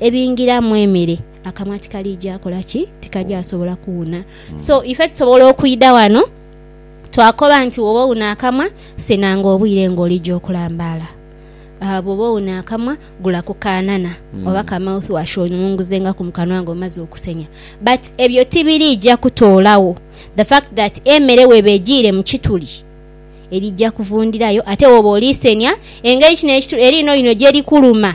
Ebingiramu emere akamwa tikalija kola ki? Tikaja sobola kuwuna. So ife tusobola okwidha wano twakoba nti woba owuna akamwa senanga obwire nga olija okulambaala. Aa bwoba owuna akamwa gula ku kaanana mm. oba ka mouth wash onunguzengaku mu kanwa nga omaze okusenya. But ebyo tibirija kutoolawo the fact that emere weba ejiire mu kituli erija kuvundirayo ate woba olisenya engeri kino ekituli eri ino ino gyerikuluma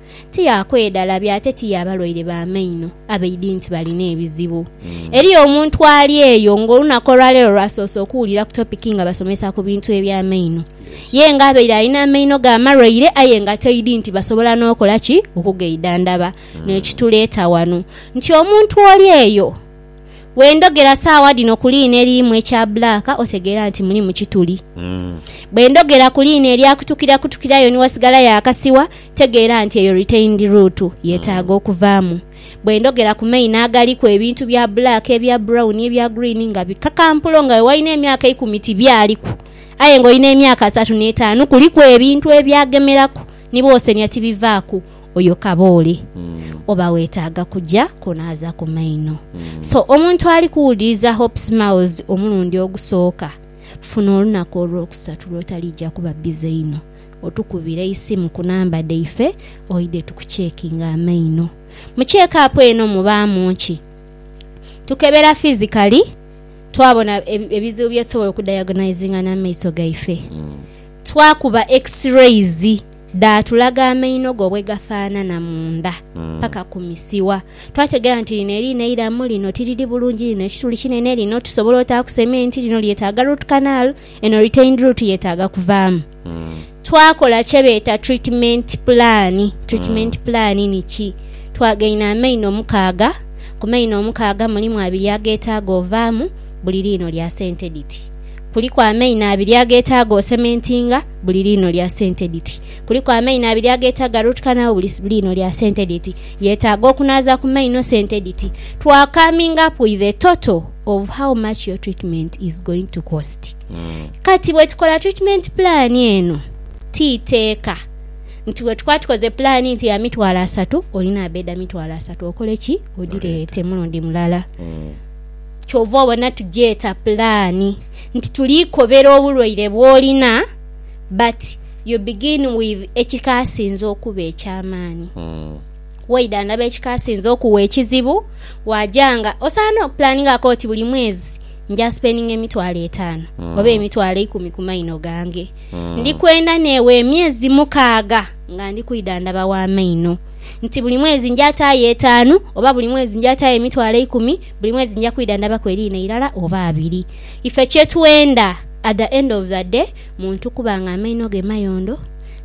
tiyaakwedha labi ate tiyaaba lwaire ba maino abaidhi nti balina ebizibu. Eriyo omuntu ali eyo ng'olunaku olwaleero lw'asoose okuwulira ku topiki nga basomesa ku bintu eby'amaino. Ye nga abaire alina amaino ge amalwaire aye nga toidhi nti basobola n'okola ki? Okugaidhandhaba. N'ekituleeta ghano nti omuntu oli eyo. Bwe ndhogera saagha dhino ku liina eririmu ekya bbulaaka otegeera nti mulimu kituli. Bwe ndhogera ku liina erya kutukirakutukira ayo ni wasigalayo akasigha, tegeera nti eyo retained root yeetaaga okuvaamu. Bwe ndhogera ku maino agaliku ebintu bya bbulaaka, ebya bbulawuni, ebya gguliini nga bikakampulo nga we walina emyaka eikumi tibyaliku aye ng'olina emyaka asatu n'etaanu kuliku ebintu ebyagemeraku ni bw'osenia tibivaaku oyo kaboole oba weetaaga kuja kunaaza ku maino. So omuntu ali kuwuliriza Hope Smiles omulundi ogusooka, funa olunaku olwokusatu lw'otaliija kuba bbize inho otukubire eisimu ku namba dhaife oidhe tukucekinge amaino. Mu cheekaapu eno mubaamu ki? Tukebera fizikali, twabona ebizibu bye tusobola okudayagonizinga n'amaiso gaife, twakuba X-rays, Dhaatulaga amaino go bwe gafaanana munda, paka ku misiwa. Twategeera nti lino eriina eiramu lino tiriri bulungi, lino ekituli kinene, lino tusobola otaaku sementi, lino lyetaaga root canal, eno retained root yetaaga kuvaamu. Twakola kye beeta treatment plan. Treatment plan ni ki? Twagaina amaino mukaaga, ku maino omukaaga mulimu abiri ageetaaga ovaamu, buli liino lya sente dhiti. Kuliku amaino abiri ageetaaga osementinga buli liino lya sente dhiti. Kuliku amaino abiri ageetaaga ruutkanagho buli liino lya sente dhiti. Yeetaaga okunaaza ku maino sente dhiti to coming up with a total of how much your treatment is going to cost. Hmm. Kati bwe tukola treatment plan eno, ti iteeka nti bwe tukuba tukoze pulaani nti ya mitwalo asatu olina abeeda mitwalo asatu okole ki odireete mulundi mulala. Hmm. Kyova obona tugyeta pulaani nti tuli kobera obulwaire bwolina but you begin with ekikasinze okuba ekyamaani. Waidha ndaba ekikasinze okuwa ekizibu waja nga osaana okupulaningako oti buli mwezi nja spendinga emitwalo etaanu oba emitwalo eikumi ku maino gange. Ndikwenda neewe emyezi mukaaga nga ndi kwidhandhaba wa maino. nti buli mwezi nja taayo etaanu, oba buli mwezi nja taayo emitwalo eikumi, buli mwezi nja kwidhandhabaku eriina eirala oba abiri. Ife kye twenda at the end of the day muntu kuba nga amaino ge mayondo,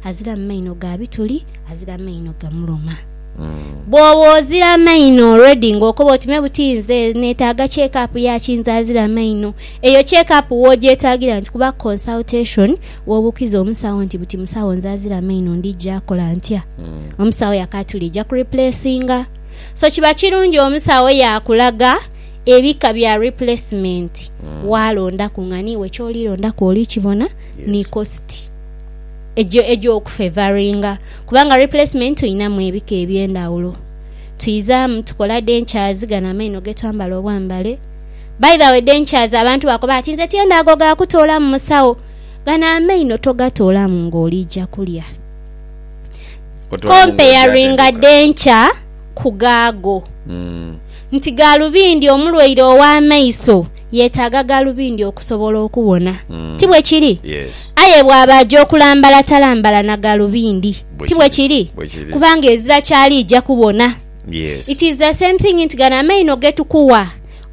aziramu maino ga bituli, azira maino gamuluma. Bw'oba ozira maino already ng'okoba oti me buti nze neetaaga check up ya ki nze azira maino, eyo check up w'ogyetaagira nti kuba consultation, Bw'obuukiza omusawo nti, Buti musawo nze azira amaino ndija kola ntya? Omusawo yakaatula eija ku replacinga. So kiba kirungi omusawo yaakulaga ebika bya replacement waalondaku nga n'iwe ky'oli londaku oli kibona ni cost eja eja okufevaringa. Kubanga replacement tulinamu ebika eby'endhawulo. Twizaamu tukola dentures gano amaino ge twambala obwambale. By the way dentures abantu bakoba ati nze tyendha ago ga kutoolamu musawo. Gano amaino togatoolamu nga oliija kulya. Comparinga dhenkya ku ghaago. Nti gaalubindi omulwaire ow'amaiso yeetaaga gaalubindi okusobola okubona. Ti bwe kiri? Aye bw'aba aja okulambala talambala na gaalubindi. Ti bwe kiri? Kubanga ezira ky'aliija kubona. It is the same thing nti gano amaino ge tukuwa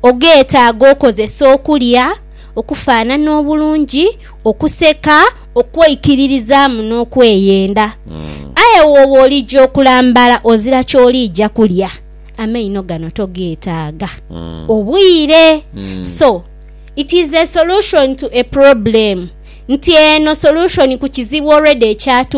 ogeetaaga okozesa okulya. okufaanana obulungi, okuseka, okweikiririzaamu, n'okweyenda. Aye bw'oba olija okulambala ozira ky'oliija kulya, amaino gano togeetaaga. Obwire. So, it is a solution to a problem. Nti eno solution ku kizibu already ekyatuuka.